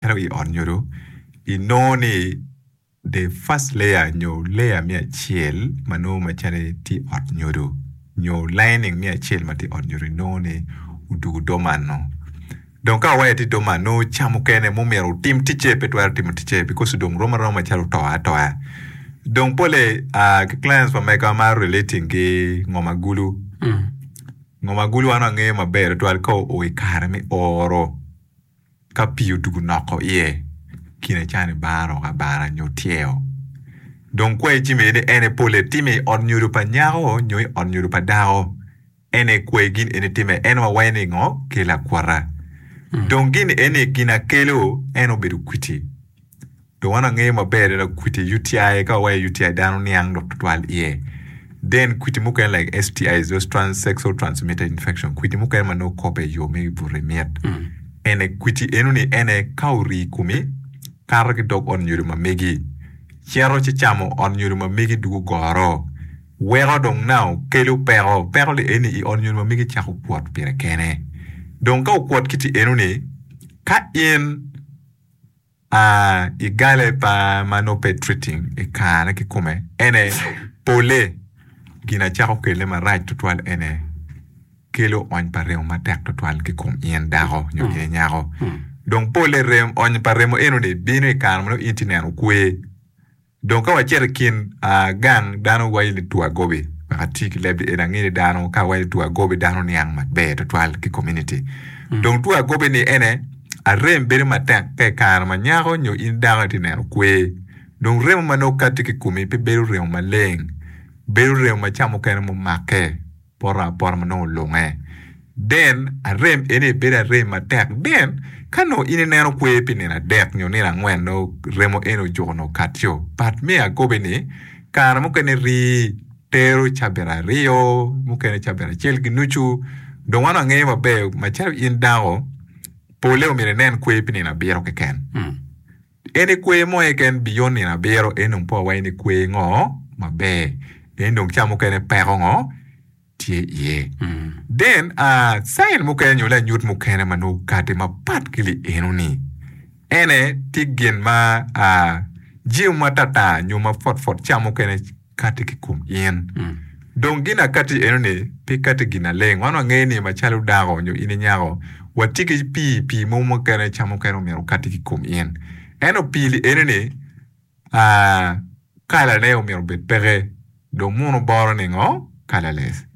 Ento i ot nyodo, inongo ni the first layer nyo layer me acel ma nongo macalo tye i ot nyodo nyo lining me acel ma tye i ot nyodo inongo ni odwogo doman-nu. Dong ka waya tye doman nongo ca mukene ma omyero otim ticce pe twero timo ticce bikos odong rom aroma macalo oto atoya. Dong polle aa ki clients pa mega ma relating ki ngom agulu. Ngom agulu an angeyo maber tutwal ka oo i kare me oro. Ka pii odugo noko iye, kine ca ni bar oko abara nyo tyeo. Dong kwai ci mede ni en epol etime i ot nyodo pa nyako nyo i ot nyodo pa dako. En aye kwai gin eni time en wawaye ni ngo? Kel akwota. Dong gin eni gin akelo en obedo kwiti. Dong an angeyo maber adada kwiti UTI ka wawaco UTI dano niang lok tutwal iye. Then kwiti mukene like STIs, those trans sexual transmitted infection, kwiti mukene ma nongo kobbe i yo me buto mit. Ene kwiti enoni ene ka orii i komi, kato ki dog ot nyodo ma megi, cito ci camo ot nyodo ma megi dugo goro, weko dong nao kelo peko, peko li eni i ot nyodo ma megi cako kwot pire kene. Dong ka okwot kiti enoni, ka in. A I galle pa ma nongo pe treating I kare kikome ene pole gin acako kelle marac tutwal ene kelo ony pa remo matek tutwal ki kom in dako nyo in nyako dong pole ony pa remo enoni bino I kare ma nongo in tye neno kwe. Dong ka wacito i kin gang dano waco ni two agobi wek ati ki leb-bi eni ange ni dano ka waco ni two agobi dano niang maber tutwal ki komuniti. Dong two agobi-ni ene arem bedo matek ka i kare ma nyako nyo in dako itye neno kwer. Dong remo ma nongo katti ki i komi pe bedo remo maleng, bedo remo ma ca mukene mumakke. poto apota ma nongo olunge then arem eni aye bedo arem matek then ka nongo in ineno kwer pi nino adek nyo nino angwen nongo remo eni ojuko nongo katio but me akobi ni kare mukene rii tero cabit aryo mukene cabit acel ki nucu dong wan wangeyo maber macalo in dako pole omyero inen kwer pi nino abiro keken. En i kwer mo eka en biyo nino abiro en dong po wa en i kwer ngo maber en dong ca mukene peko ngo tye iye then uh, sign mukene nyo lanyut mukene ma nongo okati mapat ki li eno ni ene tye gin ma uh, jemo ma tatar nyo ma pwotpwot ca mukene kati ki kom in. Dong gin akati eno ni pe kati gin aleng. Wan wangeyo ni macalo dako nyo in inyako watye ki pii, pii mo mukene cam mukene omyero okati ki kom in. Eno pii li eno ni aa kala ne omyero obed peke dong muno boro ni ngo colorless.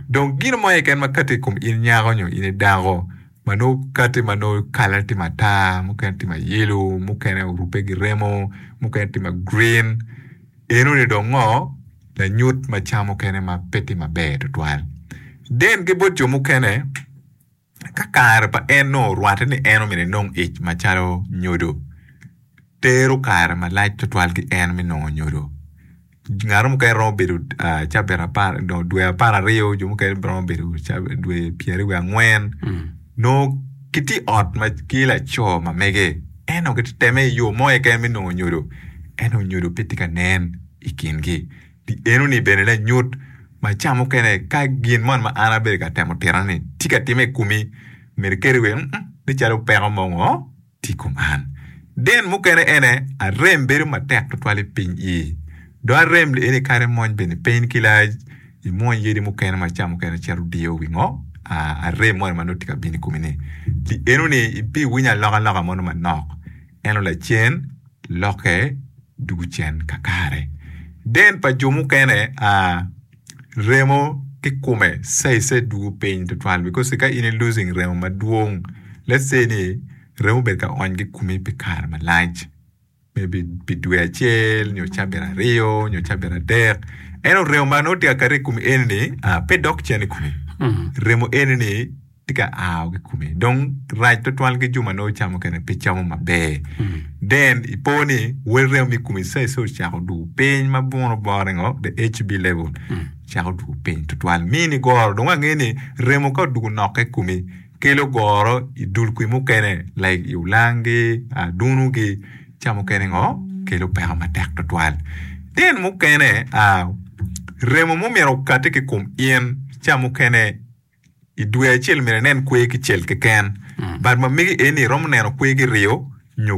Dong gin mo keken ma kati ki kom in nyako nyo in i dako ma nongo kati ma nongo kala ne tye matar, mukene tye ma yellow, mukene orube ki remo, mukene tye ma green. Enoni dong ngo lanyut ma ca mukene ma pe tye maber tutwal den ki bot jo mukene ka kare pa en nongo orwate ni en omyero enong ic macalo nyodo? Tero kare malac tutwal ki en me nongo nyodo. Ngato mukene romo bedo cabit apar nongo dwe apar aryo jo mukene romo bedo dwe pyeri wiye angwen nongo kitye i ot ma ki laco ma mege. En onongo gitye ka teme i yo mo keken me nongo nyodo, ento nyodo pe tye ka nen i kingi. Pi enoni bene lanyut ma ca mukene ka gin moni ma an abedo ka temo titone-ni tye ka timme i komi, myero iketi iye ni, Nen calo peko mo ongo tye i kom an. Din mukene ene, arem bedo matek tutwal i piny ii. Dong arem lieni kadi mony bene piny ki lac. imwony yadi mukene ma ca mukene cito diyo wi ngom arem moni ma nongo tye ka bino i komi-ni. Pi enoni ibiwinyo alokaloka moni manok, ento lacen lokke dwogo cen kakare. Deen pa jo mukene, remo ki kome caicai dwogo piny twatwal bikos ka in i losing remo madwong, let's say ni remo obedo ka onygi i komi pi kare malac, maybe pi dwe acel nyo cabit aryo nyo cabit adek eno remo ma nongo tye ka kati i kom eni ni ah, pe dok cen i kome remo eni ni tye ka ao ki kome dong rac twatwal ki jo ma nongo camo kene pe camo maber then ipo ni wel remo mi kome ca ice ocako dwogo piny ma buno bore ngo the HB level cako dwogo piny twatwal mi ni goro dong wange ni remo ka odwogo nokke i kome kelo goro i dul kwi mukene like i olangi, adunu gi ca mukene ngo kelo peko matek tutwal. Tin mukene a remo mo myero okati ki kom in ca mukene i dwe acel myero inen kwer ki cel keken but ma mege eni iromo neno kwer ki ryo nyo